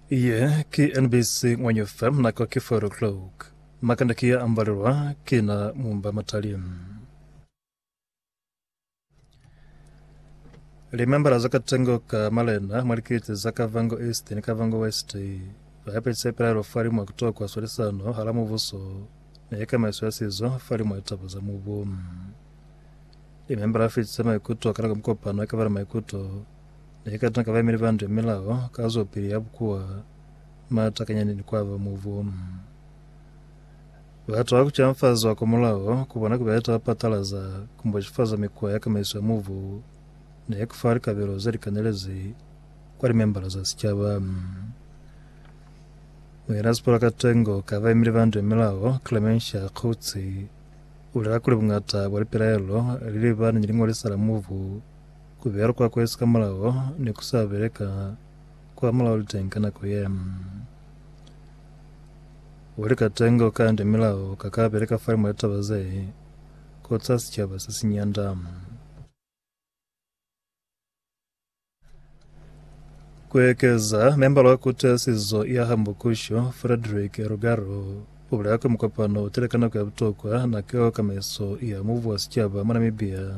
Ye ki NBC Ngwanyo FM nako ki 4 o'clock. Makanda ki ya ambalelwa ki na mumba matali. Limembala za katengo ka malena mwa likiti za Kavango East ni Kavango West ba yapetse ipelaelo fa limwa kutokwa swalisano hala mubuso ni kamaiso ya sizo fa limwa litaba za mubu. Limemba la fitisa maikuto ka nako mikopano ya kabala maikuto ne i ka tuna ka baimeli ba ndu ya milao ka zwapili ya bukuwa matakanyani ni kwaba mubu. Batu ba ku canfazwa kwa mulao ku bona ku beleta ba patalaza ku mboxifaza mikuwa ya kamaiso ya mubu ne ku fa likabelo ze li kanelezi kwa limembala za sicaba. Muinasipula ka tengo ka baimeli ba ndu ya milao, Clemencia Coetzee, Bulela kuli bungata bwa lipelaelo li lebani ni liñolisa la mubu, ku beya likwakwezi ka mulao ni ku sa beleka kwa mulao liteng ka nako ye. Bo likatengo kande milao ka ka beleka falimwa litaba ze kotsi ha sicaba se si nyanda. Ku ekeza, membala wa kutasizo ya Hambukusho, Frederick Rugaro, u bulela kuli mukopano u tile ka nako ya butokwa na keo kamaiso ya mubu wa sicaba mwa Namibia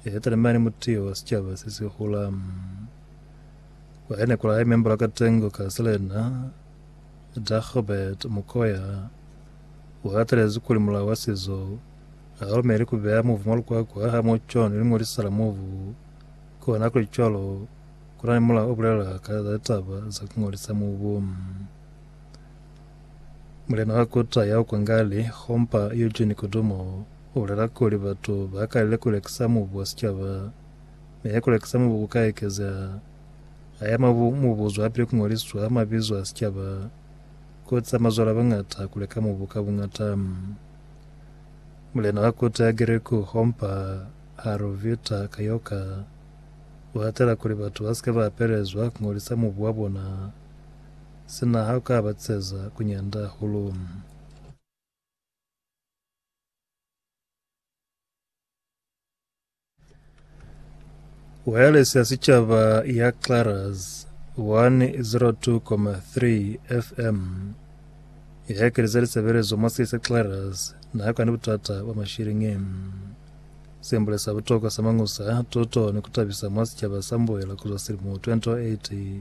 ye talimani mutiyo wa sicaba se si hula. Kwa yene ku lahe membala wa katengo ka Selena, Dagobert Mokoya, u hatalezi kuli mulao wa sizo Hakalumeli kubeya mubu mwa lukwakwa ha muco ni ling'oli sala mubu. Kona kuli cwalo, kuna ni mulao obulela ka za litaba za kung'olisa mubu. Mulena wa kuta ya kwa Ngali, Khompa Eugene Kudumo, ubulela kuli batu bakalile kulekisa mubu wa sicaba. Mi kulekisa mubu kuka ekezeha. Haya mubu mubuzwapili kung'oliswa mabizo a sicaba, kutiza mazwale abañata kuleka mubu ka buñata. Mulena wa kota ya Geriko Hompa Harovita Kayoka u hatela kuli batu ba si ke ba apelezwa ku ngolisa mubu wa bona sina ha u ka ba tiseza ku nyanda hahulu. Wireless ya Sicaba ya Claras 102,3 FM ya ekeleza lisebelezo mwa siye sa Claras naha kani butata bwa mashilingi. Sembule sa butokwa sa mañusa, tuto ni kutabisa mwa sicaba sa mbuela kuzwa silimo 2008.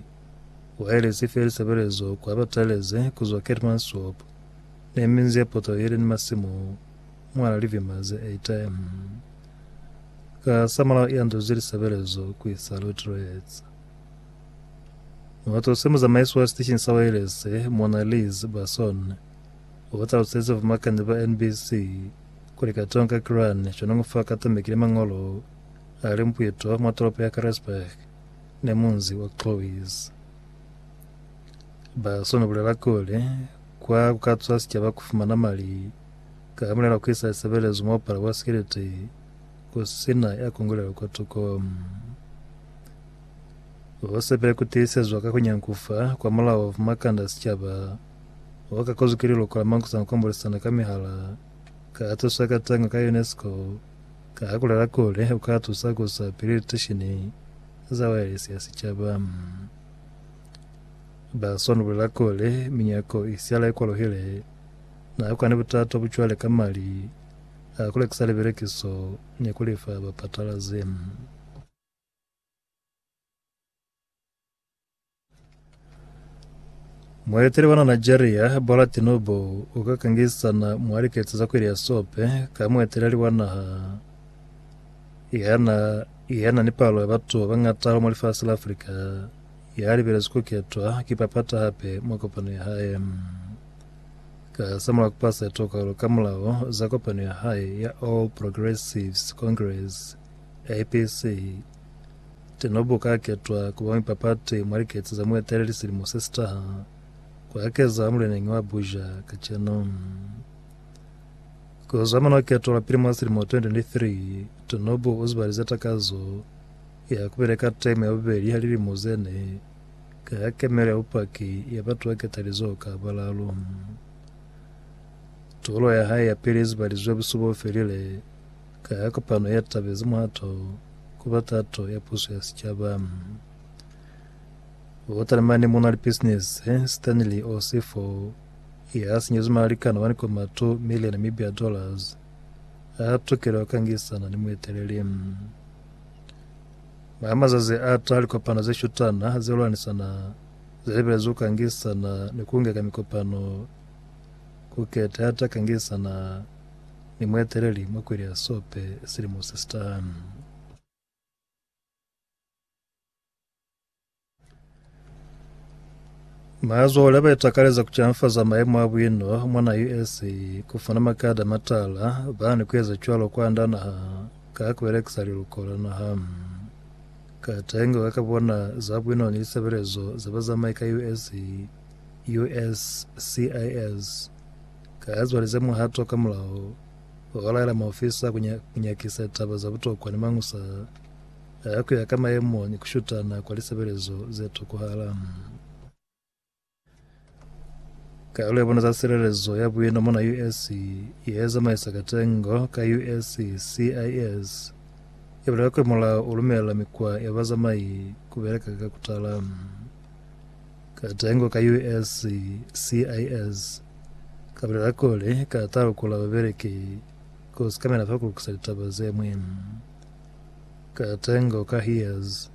Wireless ife lisebelezo kwa bataelezi kuzwa Keetmanshoop ne minzi ye poto yeli ni masimu. Mwana Livimaze a ita eng ka samulaho i anzwezi lisebelezo ku isa Lutrez? Muhato se muzamaisi wa sitesheni sa wailese, Muana Liz Basson, u ba talusezi vamakanyi ba NBC kuli katoñi ka Kiran cwaniñi fa katamekile mañolo a li mpueto mwa tolopo ya Caresburg ni munzi wa Clovis. Basson u bulela kuli, Kwa ku ka cwa sicaba ku fumana mali Ka hamulelo ki sa sebelezi muapalo wa sikiliti ku sina ya kongolelo kwa tuko. Ho sepele ku tiisezwa ka ku nyankufa kwa mulao ma kanda a sicaba, ho ka kozwi ki liloko la mankusana ku ambolisana ka mihala, ka ha tuswa ka tango ka UNESCO, ka ha ku lela kuli u ka tusa ku sa pili litishini za waelesi ya sicaba. Baswani u bulela kuli minyako i siala i kwaluhile. Na yako ni butata bu cwale ka mali a ku lekisa libelekiso ni ku li fa bapatalazi. Mueteli wa na Nigeria, Bola Tinubu, u ka kangisana mwa liketsi za kwili ya sope ka mueteleli wa naha yana yana ni palo ya batu ba bangata mwa lifasi la Afrika ya libelezwi ku ketwa ki papata hape mwa kopano ya hae. Ka za mulaho ku pasa tokalo ka mulaho za kopano ya hae ya All Progressives Congress, APC, Tinubu ka ketwa ku ba muipapati mwa likece za mueteleli silimo se si taha, ku akezaho muleneñi wa Abuja kacenu. Ku zwa mona keto la pili mwa silimo 2023, Tinubu u zibalize takazo ya ku beleka teme ya bubeli ya lilimo ze ne Ka ya kemela bupaki ya batu ba ketalizoho ka balalu. Tolo ya hae ya pili izibalizwi ya busuba o felile ka ya kopano ya tabezi muhato ku ba tato ya puso ya sicaba. Botalimani muna lipisinisi se, Stanley Osifo, ya sinyezwi malikana wa nikomatu mi le Namibia dollars, a tukile ku kangisana ni mueteleli. Mwa mazazi a taha likopano ze shutana ze lwanisana ze lebelezwi ku kangisana ni ku ngeka mikopano ku keta ya ta kangisana ni mueteleli mwa kweli ya sope silimo se si taha. Mazoho leba itakaleza kucanfaza maemo a bwino mwana USA kufana makada matala bani kueza cwalo kwanda naha ka kubelekisa liluko la naha. Katengo ka kabona za bwino ni lisebelezo za bazamai ka USA, USCIS, kazwali ze muhato ka mulao wa balaela maofisa kunyakisa taba za butokwa ni mañusa Aya kuya ka mayemo ni kushutana kwa lisebelezo ze tokohala. Kalulo ya bona za silelezo ya buino mona US ye zamaisa katengo ka US CIS e bulela kuli mulao u lumela mikwa ya bazamai ku beleka ka kutala. Katengo ka US CIS ka bulela kuli ka talukula babeleki ku sikamela fa ku lukisa litaba ze ñwi. Ka tengo ka hias,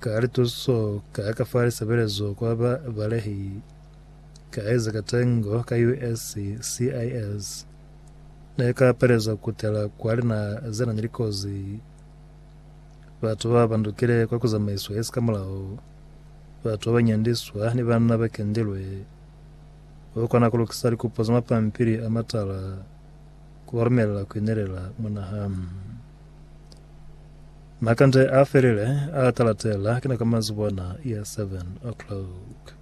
ka lituso, ka ka fa lisebelezo kwa ba balehi, ka eza ka tengo ka USCIS. Ne ka peleza kutela kwa linaha ze na ni likozi, batu ba bandukile kwa ku zamaiswa ye si ka mulao, batu ba nyandiswa ni banna ba kendilwe. U kona ku lukisa likupo za mapampili a matala. Ku ba lumelela ku inelela mona ha na kande a felile, a talatela, ki na ka manzibona ya 7 o'clock.